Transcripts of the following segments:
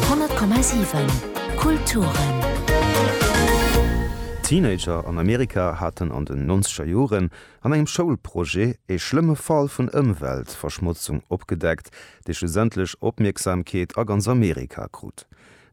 100,7 Kulturen. Teenager an Amerika haten an den nonzeger Joren an engem Schoulprojet ee schlëmme Fall vun Ëmweltverschmotzung opgedeckt, dee schlussendlech Opmierksamkeet a ganz Amerika krut.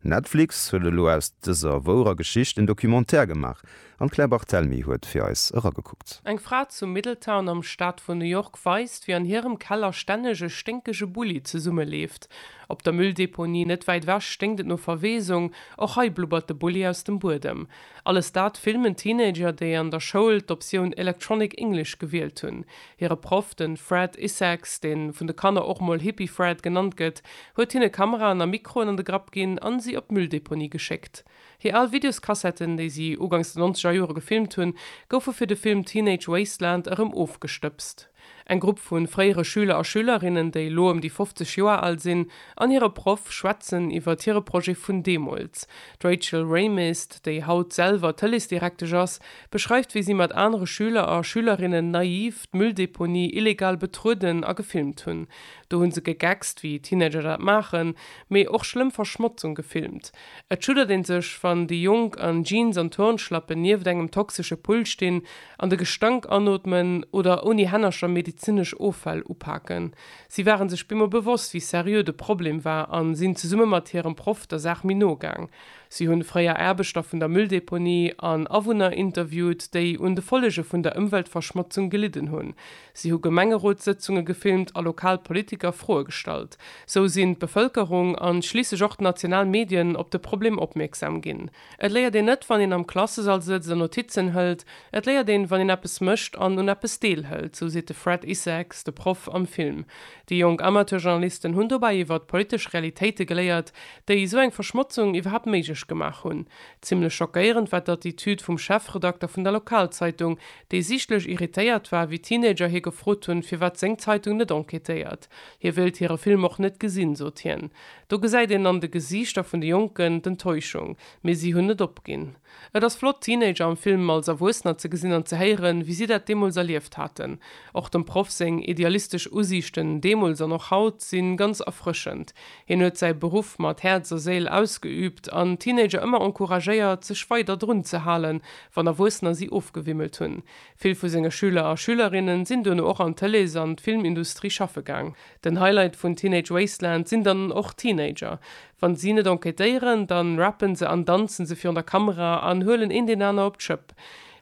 Netflix huet elo aus dëser wourer Geschicht en Documentaire gemaach, An d'Claire Barthelmy huet fir eis eragekuckt. Eng Fra zu Middletown am Staat vun New York weist, wéi an hirem Keller stänneg e sténkege Bulli zesummeleeft. Op der Mülldeponie net wäit ewech sténkt et no Verweesung. Och hei blubbert de Bulli aus dem Buedem. Alles dat filmen Teenager, déi an der Schoul d'Optioun Electronic English gewielt hunn. Hire Proff, de Fred Issacs, dee vun de Kanner och mol Hippie Fred genannt gëtt, huet hinne Kameraen a Mikroen an de Grapp ginn an si op d'Mülldeponie geschéckt. Hir al Videoskassetten, déi si ugangs de nonzeger Jore gefilmt hunn, goufe fir de Film Teenage Wasteland erëm ofgestëbst. Eng Grupp vu fréiere Schüler a Schülerinnen, déi elo ëm déi 50 Joer al sinn, an hire Proff schwätzen iwwert hire Projet vun deemools. D'Rachel Raymist, déi haut selwer Tëleesdirektesch ass, beschreift, wéi si mat anere Schüler a Schülerinnen naiv d'Mülldeponie illegal betrueden a gefilmt hunn. Do hu se gegeckst, wéi Teenager dat maachen, mee och schlëmm Verschmotzung gefilmt. Et schuddert een sech, wann déi Jonk an Jeans an Turnschlappen nieft engem toxesche Pull stinn an de Gestank anootmen oder ouni Hännercher medezinesch Offäll upaken. Si ware sech bemol bewosst, wéi seriö de Problem war a sinn zesumme mat hirem Proff der Saach méi no gaang. Si hunn fréier Aarbechter vun der Mülldeponie an Awunner interviewt, déi un de Follege vun der Ëmweltverschmotzung gelidden hunn. Si hu Gemengerotssëtzunge gefilmt a lokal Politiker Froe gestallt. Sou sinn d'Bevëlkerung an schliisslech och d'national Medien op de Problem opmierksam ginn. Et léiert een net, wann een am Klassesall sëtzt an Notizen hëlt, et léiert een, wann een eppes mécht an un eppes deelhëlt, sou seet de Fred Isaacs, de Proff am Film. Déi jonk Amateurjournalisten hunn dobäi iwwert politesch Realitéite geléiert, déi esou eng Verschmotzung iwwerhaapt méiglech gemaach hunn. Zimmlech schockéierend war d'Attitüd vum Chefredakter vun der Lokalzeitung, dee sichtlech irritéiert war, wéi Teenager hie gefrot hunn, firwat seng Zeitung net enquêtéiert. Hie wéilt hire Film och net gesinn, sot hien. Do gesäit een an de Gesiichter vun de Jonken d'Enttäuschung, mee si hunn net opginn. Et ass flott, Teenager am Film als Erwuessener ze gesinn an ze héieren, wéi si dat deemools erlieft haten. Och dem Proff seng idealistesch Usiichten deemools an och haut si ganz erfrëschend. Hien huet säi Beruff mat Häerz a Séil ausgeüübt an d'Teenager ëmmer encouragéiert, sech weider drun ze halen, wann Erwuessener si ofgewimmelt hunn. Vill vu senge Schüler a Schülerinnen sinn duerno och an d'Tëlees an d'Filmindustrie schaffe gaang. Den Highlight vun Teenage Wasteland sinn dann och d'Teenager. Wann si net enquêtéieren, dann rappen se an danzen se virun der Kamera an huelen een deen aner op d'Schëpp.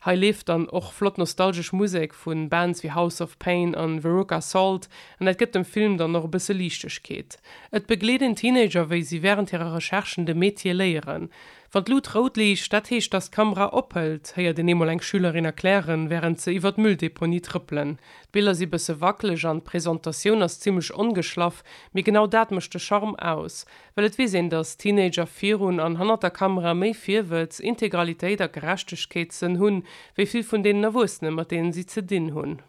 Hei leeft dann och flott nostalgesch Musek vun Bands wéi House of Pain an Veruca Salt an dat gëtt dem Film dann och e bësse Liichtegkeet. Et begleet een Teenager wéi si während hirer Recherchen de Metier léieren. Wann d'Lut rout liicht, dat heescht, dass d'Kamera ophëlt, héiert een eemol eng Schülerin erklären, wärend se iwwer d'Mülldeponie trëppelen. D'Biller si bësse wackeleg an d'Presentatioun ass zimlech ongeschlaff, mee genau dat mécht de Charme aus. Well et weess een, dass Teenager virun an hannert der Kamera méi Virwëtz, Integralitéit a Gerechtegkeetssënn hunn, wéi vill vun deenen Erwuessene, mat deenen si ze dinn hunn.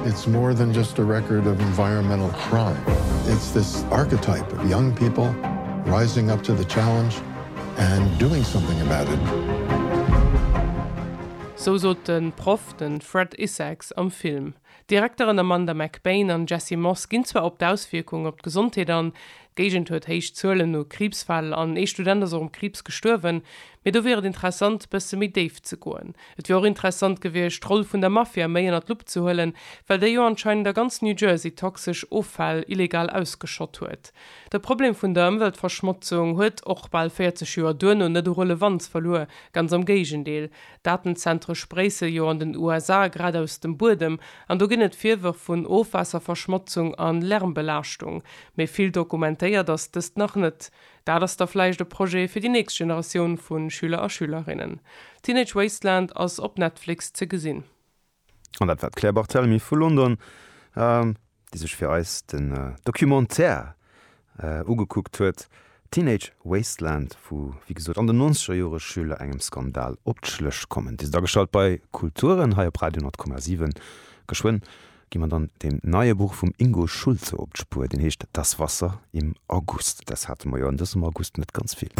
It's more than just a record of environmental crime, it's this archetype of young people rising up to the challenge and doing something about it. Sou sot de Proff, de Fred Isaacs, am Film. D'Direkteren Amanda McBaine an Jesse Moss ginn zwar op d'Auswierkung op d'Gesondheet an, d'Géigend huet héich Zuelen u Kriibsfäll an ee Student ass och um Kriibs gestuerwen, Mee do wier et interessant, bësse méi déif ze goen. Et wier och interessant gewiescht, d'Roll vun der Mafia méi ënnert d'Lupp ze huelen, well déi jo anscheinend a ganz New Jersey toxesch Offäll illegal ausgeschott huet. De Problem vun der Ëmweltverschmotzung huet och bal 40 Joer duerno net u Relevanz verluer, ganz am Géigendeel. Datenzentre spréisse jo an den USA grad aus dem Buedem, an do ginn et Virwërf vun Ofwaasserverschmotzung a Lärmbelaaschtung. Mee vill dokumentéiert ass dëst nach net. Dat ass da vläicht e Projet fir déi nächst Generatioun vu Schüler a Schülerinnen. Teenage Wasteland ass op Netflix ze gesinn. An dat war d'Claire Barthelemy vu London, déi sech fir eis den Documentaire ugekuckt huet, Teenage Wasteland, wou wéi gesot an den nonzeger Jore Schüler engem Skandal op d'Schlëch kommen. Dir sidd ageschalt bei Kulturen hei op Radio 10,7, geschwënn Gi mer dann dem neie Buch vum Ingo Schulze op d'Spuer, deen heescht Das Wasser im August. Dës hate mer jo an dësem August net ganz vill.